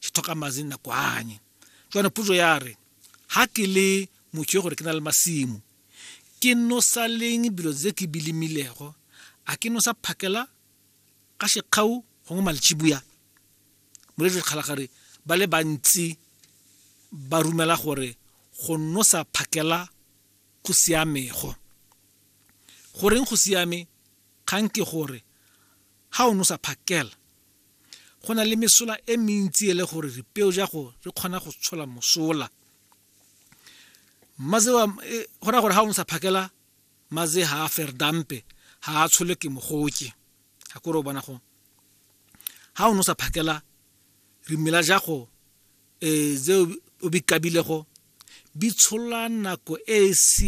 ke tlhoka madi nako anye jwana puso ya re ha ke le motho yo gore ke na le masimo ke nosa leng bilo tse ke bilimilego a ke nosa phakela ka shekgau gongwe malichibuya moledi kgalagare ba le bantsi ba rumela gore go nosa phakela go siamego goreng go siame kgang ke gore ha o nosa phakela Go na le mesola e mentsi e le gore ripeo ja go re kgona go tshola mosola. Maze wa e, go ra gore ha o ntsha phakela maze ha a ferdampe ha a tshole ke mogoke. Ha kore o bona go. Ha o nosa phakela rimela ja go e ze o bikabilego bi tshola nako e e